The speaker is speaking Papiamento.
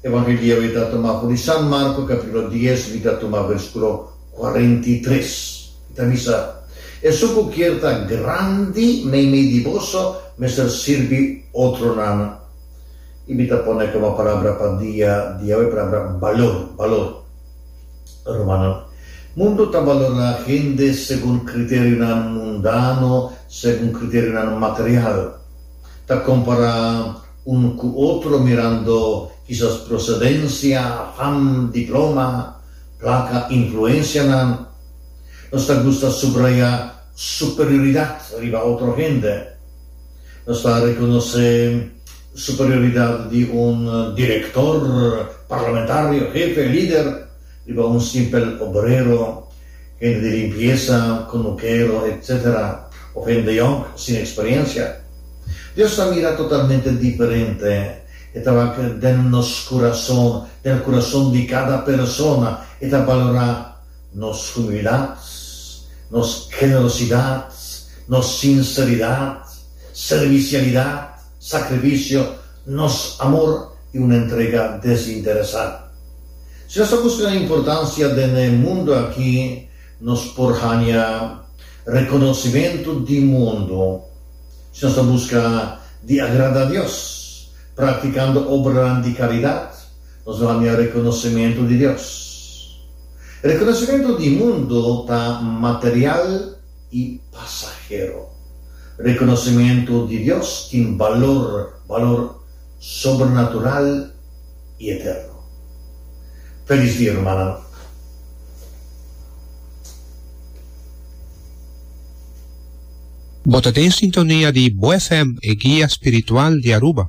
Evangelio e ta tuma for di San Marco capitulo dies mi ta tuma versiculo cuarenta y tres. E ta bisa, Esun cu kier ta grandi meimei di boso mester sirbi otronan. Y mi ta pone como palabra pa dia di awe e palabra balor, balor. Rumannan, mundo ta balora hende segun criterionan mundano, segun criterionan material. Ta compara. Unu ku otro mirando kisas prosedensia, fam, diploma, plaka, influensianan, nos ta gusta subraya superioridat riba otro hende. Nos ta rekonosé superioridat di un direktor, parlamentario, hefe, lider. Riba un simpel obrero, hende di limpiesa, conukero, etc. Of hende yònk sin eksperiencia. Dios ta mira totalmente diferente. E ta wak den nos kurason, den kurason di kada persona. E ta balorá nos humildat, nos generosidat, nos sinseridat, servisialidat. sacrificio, nos amor y un entrega desinteresa. Si nos ta busca importancia den e mundo aki, nos por haña reconocimento di mundo. Si nos ta busca di agrada Dios, practicando obranan di caridad, nos lo haña reconocimento di Dios. Reconocimento di mundo ta material. i pasahero. Rekonosementu di Dios tin balor, balor sobrenatural i eterno. Felis dia, rumannan! Bo ta den sintonia di Bo FM, e guia spiritual di Aruba.